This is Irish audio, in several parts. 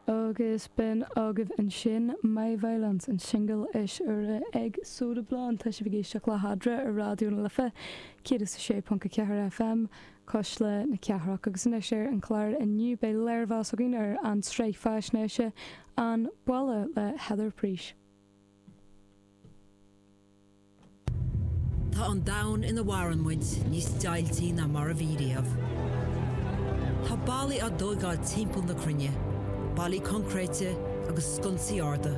Agus b'in agaibh ansin My Violence, an singil is úire ag Soda Blonde. Tá sibh ag éisteacht le hArdán ar Raidió na Life, 106.4 FM, cois le na cathrach. Agus anois ar an chlár inniu beidh léirmheas againn ar an sraith faisnéise An Balla le Heather Preece. Tá an domhan ina mhaireann muid níos deighiltí ná mar a bhí riamh. Tá ballaí á dtóigáil timpeall na cruinne, ballaí concréite agus sconsaí arda.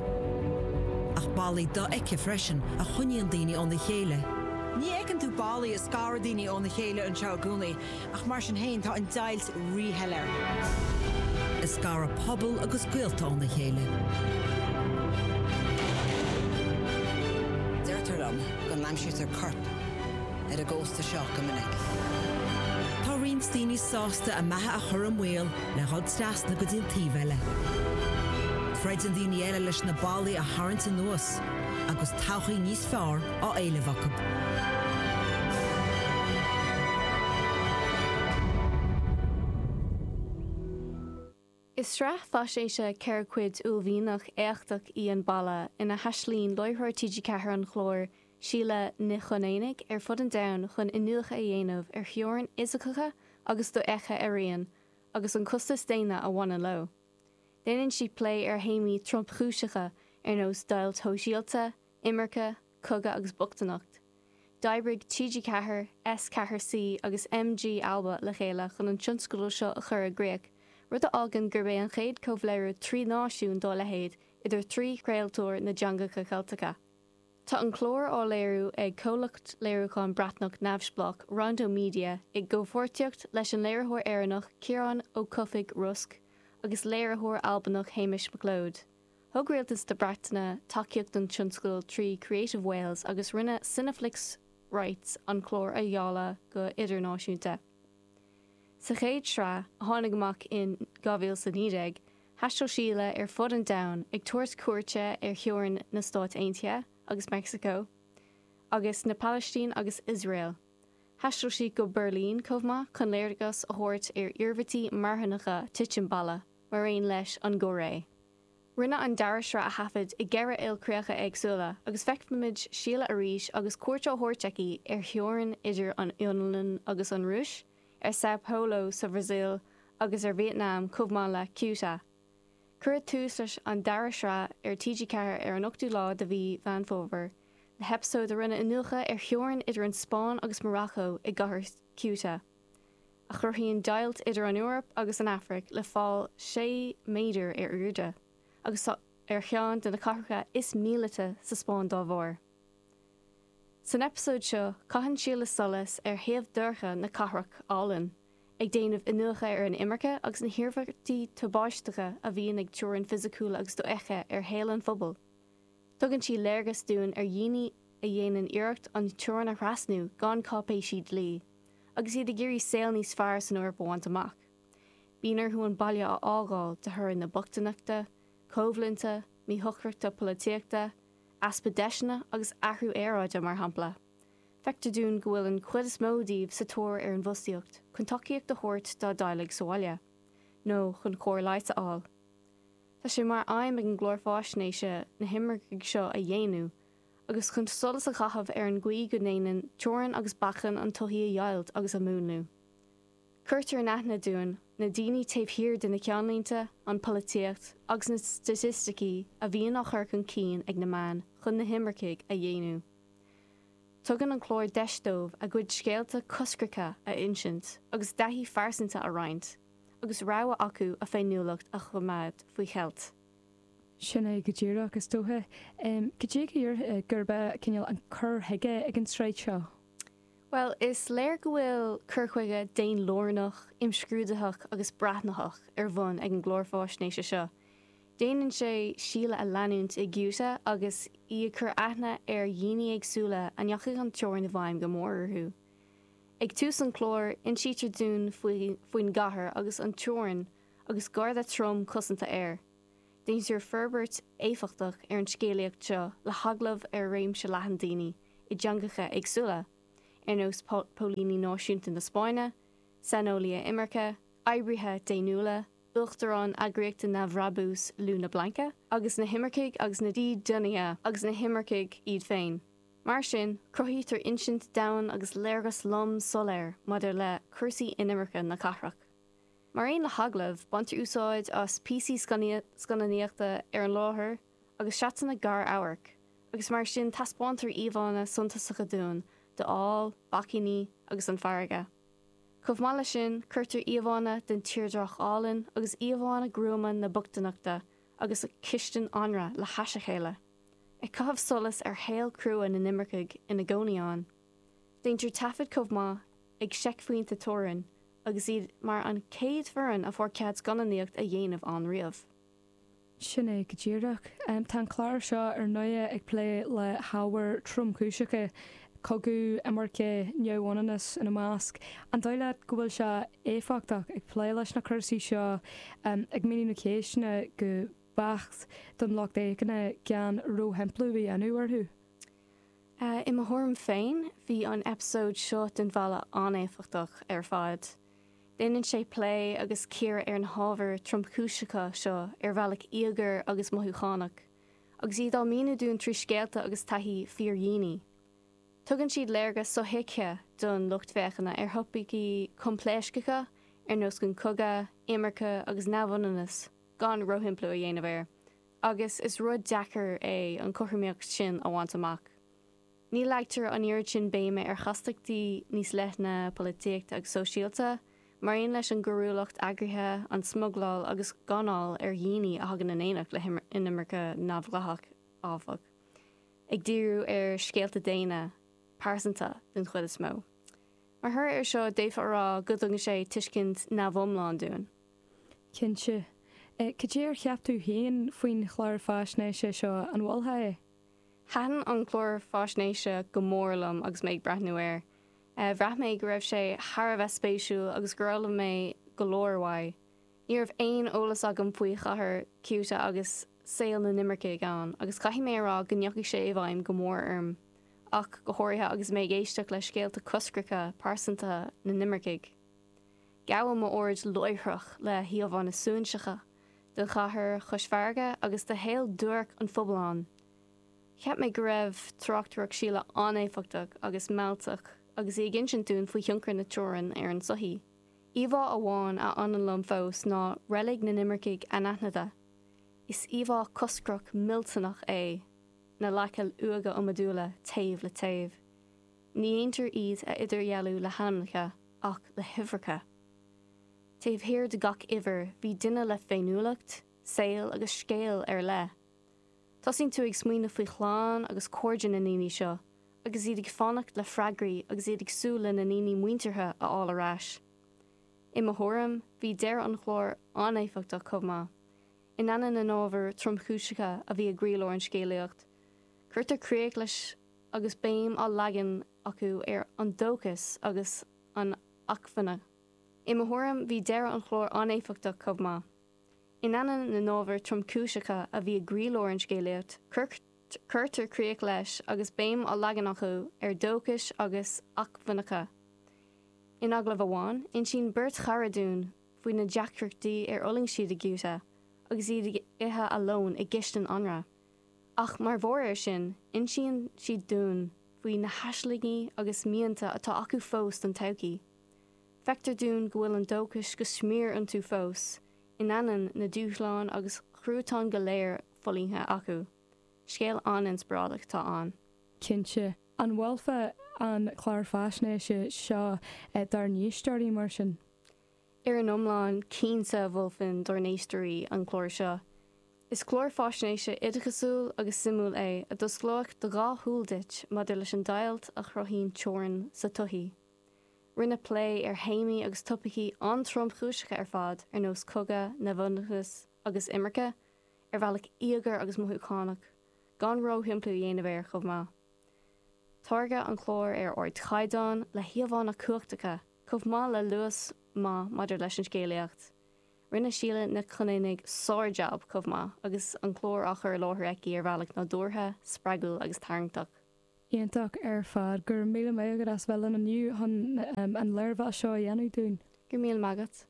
Ach ballaí dofheicthe freisin a choinníonn daoine óna chéile. Ní fheiceann tú ballaí a scaradh daoine óna chéile anseo i gcónaí. Ach mar sin féin, tá an deighilt ríshoiléir, ag scaradh pobal agus gaolta óna chéile. Deirtear liom go n-aimsítear coirp ar an gcósta seo go minic. Tá roinnt daoine sásta a mbeatha a chur i mbaol le dhul trasna go dtí an taobh eile. Troideann daoine eile leis na ballaí a tharraingt anuas, agus todhchaí níos fearr á éileamh acu. Is sraith faisnéise ceithre cuid uaillmhianach éachtach í An Balla ina thaistealaíonn láithreoir TG4 an chláir, Síle Nic Chonaonaigh, ar fud an domhain chun iniúchadh a dhéanamh ar theorainn fhisiceacha agus dofheicthe araon, agus an costas daonna a bhaineann leo. Déanann sí plé ar théamaí tromchúiseacha ar nós deighilt shóisialta, Imirce, Cogadh agus Bochtaineacht. D'oibrigh TG4, S 4 C agus MG alba le chéile chun an tionscadal seo a chur i gcríoch, rud a fhágann gurb é an chéad comhléiriú trí náisiún dá leithéid idir thrí chraoltóir na dteangacha Ceilteacha. Tá an clár á léiriú ag comhlacht léiriúcháin Breatnach neamhspleách Rondo Media i gcomhpháirtíocht leis an léiritheoir Éireannach Ciarán Ó Cofaigh, Rosg, agus léiritheoir Albanach Hamish McLeod. Thug Rialtas na Breataine tacaíocht don tionscadal trí Creative Wales agus rinne Cineflix Rights an clár a dháileadh go h-idirnáisiúnta. Sa chéad sraith, a tháinig amach in 2019, thaisteal Síle ar fud an domhain ag tabhairt cuairte ar theorainn na Stáit Aontaithe agus Meicsiceo, agus na Palaistín agus Iosrael. Thaisteal sí go Beirlín chomh maith chun léargas a thabhairt ar iarmhairtí marthanacha titim balla. mar aon leis an gCóiré. Rinneadh an dara sraith a thaifead i gceithre ilchríocha éagsúla agus feicfimid Síle arís agus cuairt á thabhairt aici ar theorainn idir an Fhionlainn agus an Rúis, ar Sao Paulo sa Bhrasaíl agus ar Vietnam chomh maith le Ceuta. Cuireadh tús leis an dara sraith ar TG4 ar an 8ú lá de mhí Mheán Fómhair le heipeasóid a rinne iniúchadh ar theorainn idir an Spáinn agus Morocco i gcathair Ceuta. a chruthaíonn deighilt idir an Eoraip agus an Afraic le fál 6 méadar ar airde, agus í ar cheann de na cathracha is míleata sa Spáinn dá bharr. San eipeasóid seo, caitheann Síle solas ar thaobh dorcha na cathrach álainn, ag déanamh iniúchadh ar an imirce agus na hiarmhairtí tubáisteacha a bhíonn ag teorainn fisiciúil agus dofheicthe ar shaol an phobail. Tugann sí léargas dúinn ar dhaoine a dhéanann iarracht an teorainn a thrasnú gan cáipéisí dlí, agus iad ag iarraidh saol níos fearr san Eoraip a bhaint amach. Bíonn orthu an baile a fhágáil de thoradh na bochtaineachta, coimhlinte, míshocrachta polaitíochta, easpa deiseanna agus athrú aeráide, mar shampla. Feictear dúinn go bhfuil an chuid is mó díobh sa tóir ar an bhfostaíocht chun tacaíocht a thabhairt dá dteaghlaigh sa bhaile, nó chun cóir leighis a fháil. Tá sé mar aidhm ag an gclár fáisnéise na himircigh seo a dhaonnú, agus chun solas a chaitheamh ar an gcaoi go ndéanann teorainn agus bacainn an tsochaí a dheighilt agus a mhúnlú. Cuirtear in aithne dúinn na daoine taobh thiar de na ceannlínte, an pholaitíocht agus na staitisticí a bhíonn á chur chun cinn ag na meáin chun na himircigh a dhaonnú. Tugann an clár deis dóibh a gcuid scéalta coscracha a insint agus taithí phearsanta a roinnt agus rogha acu a bhféiniúlacht a choimeád faoi cheilt. Sin é go díreach, is dócha. Go dté go díreach é, gurb ea, cineál, an cur chuige ag an tsraith seo. Bhuel, is léir go bhfuil cur chuige daonlárnach, imscrúdaitheach agus breathnaitheach ar bhun ag an gclár fáisnéise seo. Déanann sé Síle a leanúint i gCeuta agus í ag cur aithne ar dhaoine éagsúla a ndeachaigh an teorainn i bhfeidhm go mór orthu. Ag tús an chláir, insítear dúinn faoin gcathair agus an teorainn, agus garda trom cosanta air. Déantar forbairt éifeachtach ar an scéalaíocht seo le hagallamh ar réimse leathan daoine i dteangacha éagsúla, ar nós póilíní náisiúnta na Spáinne, saineolaithe imirce, oibrithe daonnúla, uachtarán eagraíochta neamhbhrabúis Luna Blanca agus na himircigh agus na dídeanaithe agus na himircigh iad féin. Mar sin, cruthaítear insint domhain agus léargas lom soiléir maidir le cúrsaí inimirce na cathrach. Mar aon le hagallamh, baintear úsáid as píosaí scannánaíochta ar an láthair agus seatanna gar-amhairc agus mar sin taispeántar íomhánna suntasacha dúinn de fhál, bacainní agus an farraige. Chomh maith leis sin, cuirtear íomhánna den tírdreach álainn agus íomhánna gruama na bochtaineachta agus an chistin anraith le hais a chéile, ag caitheamh solas ar shaol crua na n-imircigh ina gcónaí ann. Deintear taifead chomh maith ag seicphointe teorann agus iad mar an chéad foireann a fuair cead scannánaíocht a dhéanamh ann riamh. Sin é go díreach. Tá an clár seo ar ndóigh ag plé le hábhair tromchúiseacha, cogadh, imirce, neamhionannas ina measc. An dóigh leat go bhfuil sé éifeachtach ag plé leis na cúrsaí seo, ag míniú na ceisteanna go beacht don lucht fhéachana gan róshimpliú a dhéanamh orthu? I mo thuairim féin, bhí an eipeasóid seo den Bhalla an-éifeachtach ar fad. Déanann sé plé agus cíoradh ar na hábhair tromchúiseacha seo ar bealach íogair agus mothúchánach, agus iad á míniú dúinn trí scéalta agus taithí fíordhaoine. Tugann siad léargas sothuigthe don lucht féachana ar thopaicí coimpléascacha ar nós an cogadh, imirce agus neamhionannas, gan róshimpliú a dhéanamh air. Agus is rud deacair é an cothromaíocht sin a bhaint amach. Ní leagtar an oiread sin béime ar chastachtaí níos leithne polaitíochta agus sóisialta, mar aon leis an gcoiriúlacht eagraithe, an smugláil agus gáinneáil ar dhaoine a thagann in éineacht le inimirce neamhdhleathach, áfach, ag díriú ar scéalta daonna, pearsanta den chuid is mó. Mar thoradh air seo, d'fhéadfá a rá go dtugann sé tuiscint neamhiomlán dúinn. Cinnte. Cad é ar cheap tú féin faoin chlár faisnéise seo, an mholfá é? Thaitin an clár faisnéise go mór liom agus mé ag breathnú air. Bhraith mé go raibh sé thar a bheith spéisiúil agus gur fhoghlaim mé go leor uaidh. Ní raibh aon eolas agam faoi chathair Ceuta agus saol na n-imircigh ann agus caithfidh mé a rá go ndeachaigh sé i bhfeidhm go mór orm, ach go háirithe agus mé ag éisteacht le scéalta coscracha pearsantaithe na n-imircigh. Gabhadh m'aird láithreach le híomhánna suaithinseacha den chathair chois farraige agus de shaol duairc an phobail ann. Cheap mé go raibh tráchtaireacht Shíle an-éifeachtach agus mealltach agus í ag insint dúinn faoi thionchar na teorann ar an tsochaí. Íomhá amháin a fhanann liom fós ná reilig na n-imircigh anaithnide. Is íomhá coscrach millteanach é, na leaca uaighe iomadúla taobh le taobh. Ní déantar iad a idirdhealú le hainmneacha ach le huimhreacha. Taobh thiar de gach uimhir bhí duine le féiniúlacht, saol agus scéal ar leith. Tosaíonn tú ag smaoineamh faoi chlann agus cairde na ndaoine seo agus iad ag fanacht le freagraí agus iad ag súil lena ndaoine muinteartha a fháil ar ais. I mo thuairim, bhí deireadh an chláir an-éifeachtach chomh maith. In ainneoin na n-ábhar tromchúiseacha a bhí i gcroílár an scéalaíocht, cuirtear críoch leis. agus béim á leagan acu ar an dóchas agus an acmhainne. I mo thuairim, bhí deireadh an chláir an-éifeachtach chomh maith. In ainneoin na n-ábhar tromchúiseacha a bhí i gcroílár an scéalaíocht, cuirtear críoch leis agus béim á leagan acu ar dhóchais agus acmhainneacha. In agallamh amháin, insíonn beirt chara dúinn faoi na deacrachtaí ar fhulaing siad i gCeuta agus iad ag ithe a lón i gcistin anraith. Ach mar bharr ar sin, insíonn siad dúinn faoi na haislingí agus mianta atá acu fós don todhchaí. Feictear dúinn go bhfuil an dóchais go smior iontu fós, in ainneoin na dúshláin agus chruatain go léir fulaingthe acu. Scéal an-inspioráideach atá ann. Cinnte. An mholfá an clár faisnéise seo dár n-éisteoirí, mar sin? Ar an iomlán, cinnte, mholfainn dár n-éisteoirí an clár seo. Is clár faisnéise oideachasúil agus suimiúil é a d'osclódh do dhá shúil duit maidir leis an deighilt a chruthaíonn teorainn sa tsochaí. Rinneadh plé ar théamaí agus topaicí an-tromchúiseacha ar fad ar nós cogadh, neamhionannas agus imirce, ar bhealach íogair agus mothúchánach, gan ró-shimpliú a dhéanamh air, chomh maith. Táirgeadh an clár ar ardchaighdeán, le híomhánna cumhachtacha, Chomh maith le luas maith maidir leis an scéalaíocht, rinne Síle Nic Chonaonaigh sár-jab chomh maith agus an clár á chur i láthair aici ar bhealach nádúrtha, spreagúil agus tarraingteach. Iontach ar fad. Go raibh míle maith agat as bheith linn inniu chun an léirmheas seo a dhéanamh dúinn. Go raibh míle maith agat.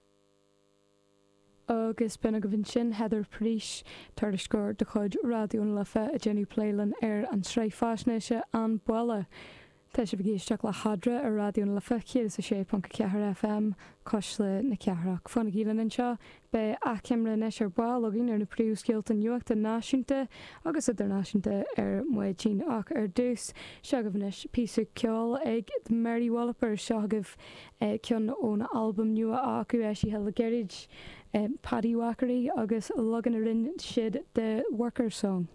Agus b'in agaibh ansin Heather Pryse, tuairisceoir de chuid Raidió na Life, ag déanamh plé linn ar an tsraith faisnéise An Balla. Tá sibh ag éisteacht le hEadra ar Raidió na Life 106.4 FM, Cuisle na Cathrach. Fanaigí linn anseo, beidh achoimre anois ar ball againn ar na príomhscéalta nuachta náisiúnta agus idirnáisiúnta ar maidin ach ar dtús, seo agaibh anois píosa ceoil ag The Mary Wallopers, seo agaibh ceann ón albam nua acu eisithe le gairid, Paddywhackery, agus leagan a rinne siad de 'Workers Song'.